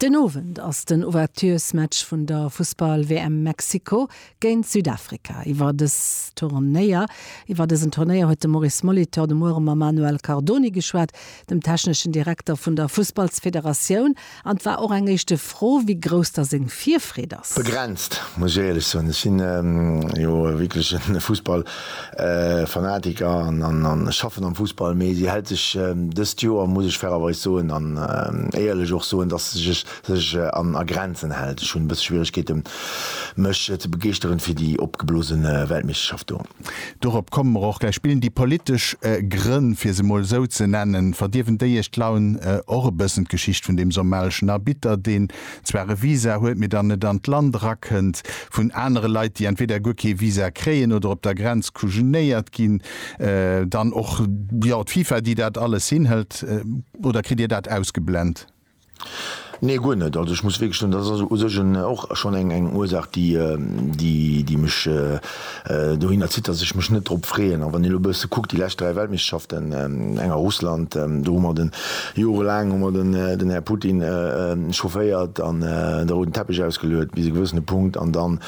Den Owend ass den Ouvertures-Match vun der Fussball-WM Mexiko géint Südafrika. Iwwer dës Turnéier, iwwer dësen Turnéier huet de Maurice Molitor de Muere mam Manuel Cardoni geschwat, dem techneschen Direkter vun der Fussballsfederatioun, an 't war och eng éischte. d'Fro, wéi grouss da seng Virfreed ass. Begrenzt, muss ech éierlech soen. Ech sinn jo wierklech e Fussballfanatiker an ech schaffen am Fussball. Mee si hält sech dëst Joer, muss ech fairerweis soen an éierlech och soen, dass se sech a Grenzen hält. Ech hunn e bësse Schwieregkeete mech ze begeeschteren fir déi opgeblose Weltmeeschterschaft do. Dorop komme mer och gläich. Spillen déi politesch Grënn, fir se emol esou ze nennen, verdierwen déi iech d'Laun? Och e bëssen d'Geschicht vun deem somalischen Arbitter, deen zwar e Visa huet, mee dann net an d'Land erakënnt, vun anere Leit, déi entweder guer kee Visa kréien oder op der Grenz kujenéiert ginn, dann och, jo, d'FIFA, déi dat alles hinhëlt. Oder kritt dir dat ausgeblent? Nee, guer net. Also ech muss wierklech soen, dat ass u sech en och schonn eng eng Ursaach, déi déi déi mech dohinner zitt, datt ech mech net drop freeën. A wann een elo e bësse kuckt, déi lescht dräi Weltmeeschterschaften, eng a Russland, do hu mer den, jorelaang hu mer den den Här Putin chaufféiert an de rouden Teppech ausgeluet bis e gewëssene Punkt an dann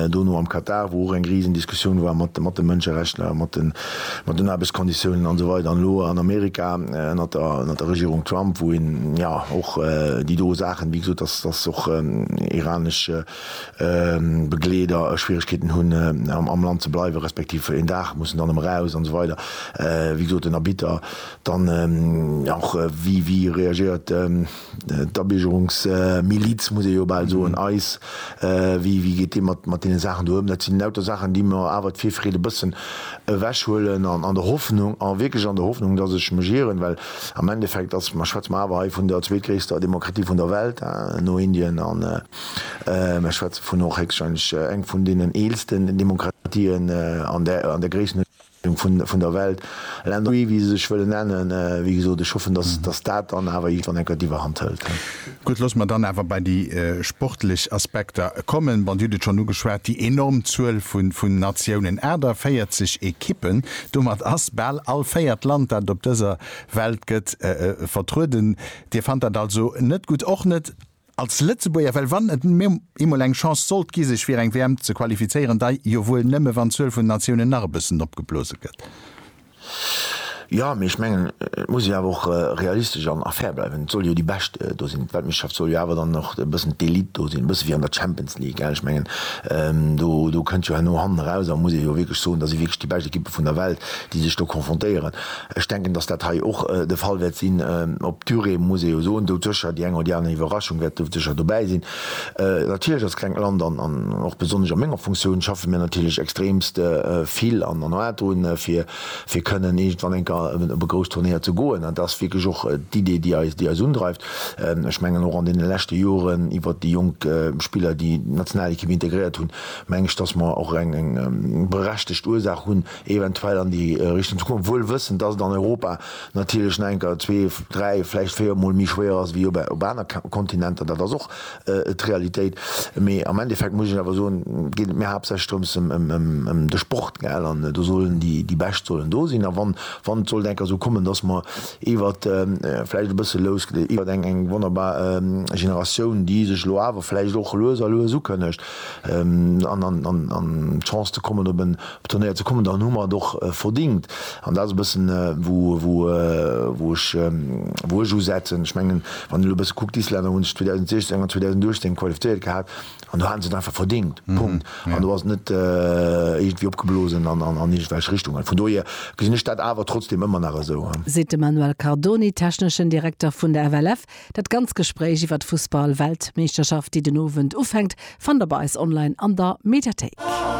Dono am Katar, wou och eng riesen Diskussioun war mat de Mënscherechtler, mat den Aarbechtskonditiounen an esou weider. An elo an Amerika ënnert der Regierung Trump, wou een jo och déi do Saachen, wéi gesot, dass och iranesch Begleeder Schwieregkeeten hunn am Land ze bleiwen, respektiv een Dag mussen dann erëm eraus an esou weider. Wéi gesot, den Arbitter dann och, wéi reagéiert D'Abiergerungsmiliz, muss ee jo bal soen, eis, wéi geet Dir mat deene Saachen do ëm? Dat sinn lauter Saachen, déi mer awer d'Virfreed e bëssen ewechhuelen an an der Hoffnung, an wierklech an der Hoffnung, dass ech mech ieren, well am Endeffekt ass, mä schwätze mer awer hei vun der zweetgréisster Demokratie vun der Welt, no Indien, an mer schwätze vun och héchstwahrscheinlech eng vun deenen eelsten Demokratien an där Gréissenhuecht. vun der Welt, Länner, wéi se sech wëllen nennen. Wéi gesot, ech hoffen, datt dat dann awer iergendwann enker d'Iwwerhand hëlt. Gutt, loosse mer dann awer bei déi sportlech Aspekter kommen. Bon, Dir hutt et schonn ugeschwat, déi enorm Zuel vun Natiounen, 48 Ekippen. Domat ass bal all véiert Land, dat op dëser Welt gëtt, vertrueden. Dir fannt dat also net gutt? Och net Als Lëtzebuerger, well wann et eemol eng Chance sollt gi sech fir eng WM ze qualifizéieren, dei jo wuel nëmme wann d'Zuel vun Natiounen nach e bëssen opgeblose gëtt. Jo, mee ech mengen et muss ee awer och realistesch an fair bleiwen. Et soll jo déi Bescht do sinn. D'Weltmeeschterschaft soll jo awer dann och e bëssen d'Elite do sinn, e bësse wéi an der Champions League. Ech mengen do kënnt jo herno hannen eraus a muss ee jo wierklech soen, dat si wierklech déi bescht Ekippe vun der Welt déi sech do confrontéieren. Ech denken, dass dat hei och de Fall wäert sinn. Op d'Durée muss ee jo soen, do sécher déi eng oder déi aner Iwwerraschung wäert do sécher dobäi sinn. Natierlech als klengt Land an och besonnesch a menger Funktioun schaffe mir natierlech extremst vill an an hârt drun, fir fir kënnen iergendwann eng Kéier op e grousst Turnéier ze goen. Dat ass wierklech och d'Idee, déi eis déi eis undreift. Ech mengen och an deene leschte Joren iwwert déi jonk Spiller, déi d'Nationalekipp integréiert hunn, meng ech, dass mer och eng eng berechtegt Ursaach hunn, eventuell an déi Richtung ze goen, wuel wëssend, dass et an Europa natierlech nach enker zwee, dräi, vläicht véier Mol méi schwéier ass wéi op aner Kontinenter. Dat ass och d'Realitéit. Mee am Endeffekt muss ech Iech awer soen, geet et mir haaptsächlech drëms ëm de Sport, gell. An do sollen déi Bescht sollen do sinn. A wann et sollt enker esou kommen, dass mer iwwert, vläicht e bësse lous, iwwert eng wonnerbar Generatioun, déi sech elo awer vläicht och lues a lues ukënnegt, an an d'Chance ze kommen op en Turnéier ze kommen, dann hu mer et och verdingt an dat ass e bëssen wou wou ech usetzen. Ech mengen wann een elo e bësse kuckt, d'Islänner hunn sech 2016 an 2018 qualifizéiert gehat an do hate se et einfach verdingt, Punkt, an do ass et net iergendwéi opgeblosen an an iergendwelch Richtungen. Vun dohier gesinn ech dat awer trotzdem ëmmer nach esou. Seet de Manuel Cardoni, techneschen Direkter vun der FLF. Dat ganz Gespréich iwwer d'Fussball-Weltmeeschterschaft, déi den Owend ufänkt, fannt der bei eis online an der Mediathéik.